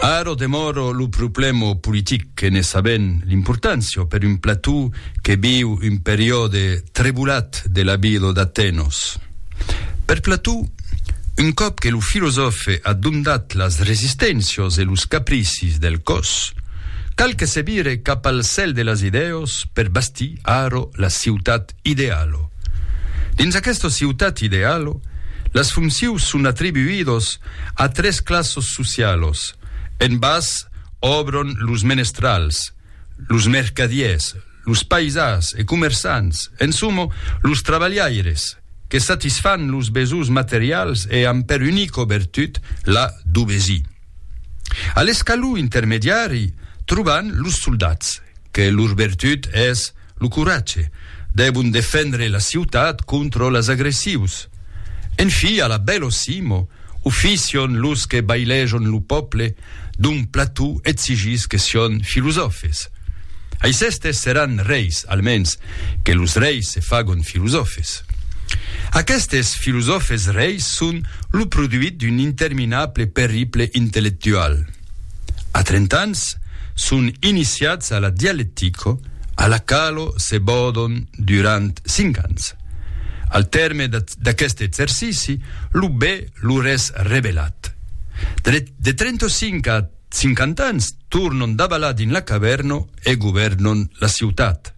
Ara demòra lo problèma politic que ne sabèm l'importància per un plató que viu un periòde trebulat de la vida d'Atenos. Per Plató, un còp que lo filosòfe a dondat las resisténcias e los capricis del còs, cal que se vire cap al cèl de las idèas per bastir ara la ciutat Idealo. Dins aquesta ciutat idealo, las fonccius son atribuidos a tres classos socialos, en bas òbron los menestrals, los mercadiers, los paisans e comerçants, en somo, los trabalhaires, que satisfan los besohs materials e an per unico bertut la dubesi. A l'escalon intermediari, troban los soldats, que lor bertut es, Lo coratge. Devon defendre la ciutat contra las agressius. En fi, a la bello simo, oficion los que bailejon lo pòple d'un plató exigís que sión filosòfes. Aicestes seràn reis, almens, que los reis se fagon filosòfes. Aquestes filosòfes reis son lo produit d'un interminable perriple intellectual. A trent'ans, son iniciats a la dialectico, a la qualo se bòdon durant cinc ans. Al tèrme d'aqueste exercici, lo be lor es revelat. De 35 a 50 ans tornon davalar dins la cavèrno e govèrnon la ciutat.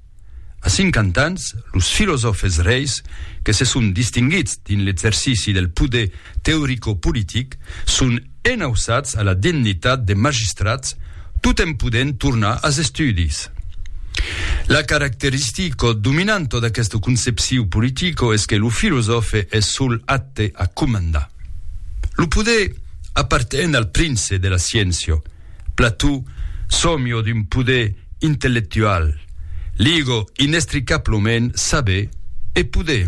A 50 ans, los filosòfes reis que se son distinguits dins l'exercici del poder teoricopolitic son Enauçats a la dignitat de magistrats tot en podent tornar as estudis. La caracteristica dominanta d'aquesta concepcion politica es que lo filosòfe es sol apte a comandar. Lo poder aparten al prince de la sciéncia. Plató sòmia d'un poder intellectual. Liga inestricablament saber e poder.